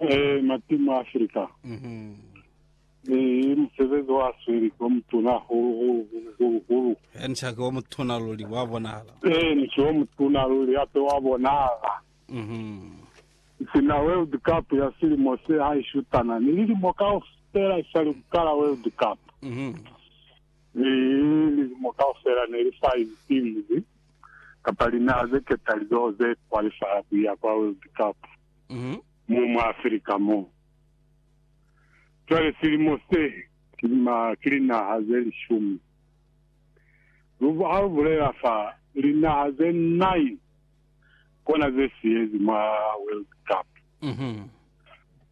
Ee, matima a Afrika ni musebezi wa sweli wa mutuna hahulu hulu hulu hulu hulu. He, ni shaki wa mutuna luli, wa bonahala. Ee, ni shi wa mutuna luli, hape wa bonahala. Sina World Cup ya silimo se ha ishutana ni lilimo kaufela isali ku kala World Cup, mi lilimo kaufela ne li fa izi timu ze, kapa linaha ze ketalizoho ze kwalifaya ku ya kwa World Cup. mo mwa Africa mo. Cwale silimo se, ki lima ki linaha ze lishumi. Lu, ha lu bulela fa, linaha ze nine kona ze siyezi mwa World Cup,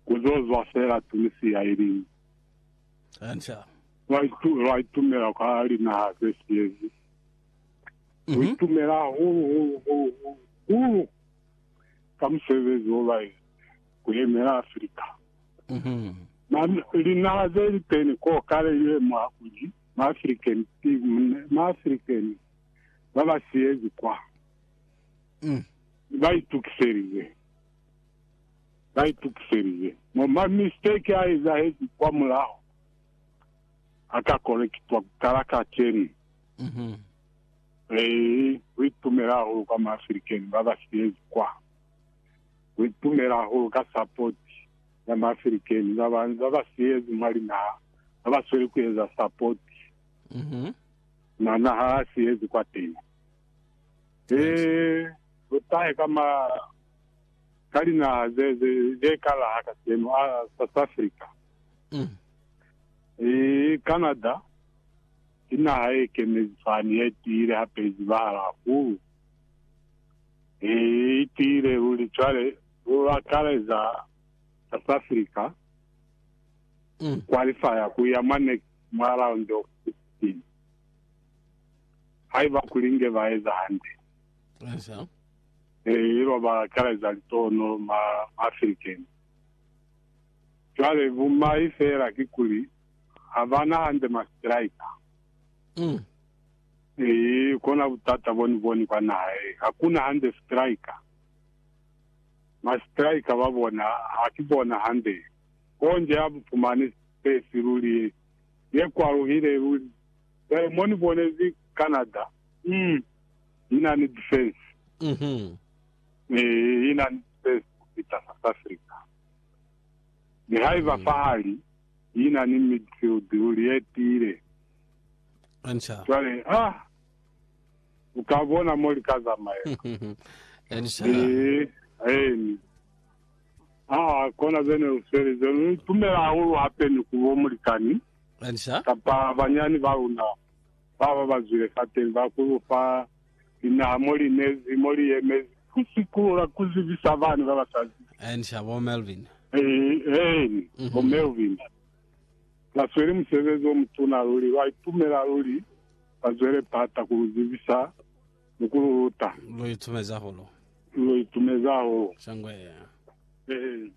ku zo zwa fela Tunisia iliñwi. Lwa itu, lwa itumela kwa linaha ze siyezi. Lu itumela hahulu, hulu, hulu, hulu, hulu. ka musebezi wo ba eza ku yemela Africa. Ma linaha ze li teni ko kale li lemuha kuli ma African ki mune, ma African ba ba siyezi kwa. Ba itukiselize, ba itukiselize. Mo ma mistake a ezahezi kwa mulaho a ka korektwa ku kala kacenu. Ee, ku itumela hahulu kwa ma African ba ba silezi kwa. Ku itumela hahulu ka support ya ma African ba ba, ba ba silezi mwa linaha, ba ba sweli ku eza support na naha ya silezi kwateni. Ee, lu tahe ka ma, ka linaha ze, ze, ze ka laha kaseno, a, South Africa, ee, Canada, Ki naha ye kemezi fani ye tiile hape ye zibahala hahulu. I tiile luli cwale, lu akaleza South Africa, ku kwalifaya ku ya mwa next, mwa round of 16. Haiba kuli nge ba eza hande, ee, il'o ba akaleza litohono ma African. Cwale bumai feela kikuli, Ha ba na hande ma striker. Mm. Ee, kona butata bo ni boni kwa naha ye. Ha ku na hande striker. Ma striker ba bona, ha ki bona hande. Konje ha bu fumani space luli ye, ye kwaluhile luli. Jwale mo ni bonezi Canada, mm, i na ni defense. Mhm. Ee, i na ni defense ku fita South Africa. Nihaiba Mm. fahali, yi na ni midfield luli ye tiile. Cwale, ah! U ka bona mo li ka zamaela. Li, Eeni. Ah, kona ze ne lu swelize. Lu ni tumela hahulu hape ni ku bo mulikani kapa banyani ba luna ba ba ba zwile fateni ba ku lu fa linaha mo li nezi, mo li yemezi ku sikulula, ku zibisa bani ba ba sa zibi. Eeni, sha bo Melvin. Eeni, bo Melvin ba sweli musebezi o mutuna luli. Lwa itumela luli ba zwele pata ku lu zibisa ni ku lu luta. Lu itumezi hahulu. Lu itumezi hahulu. Shangwe. Eeni.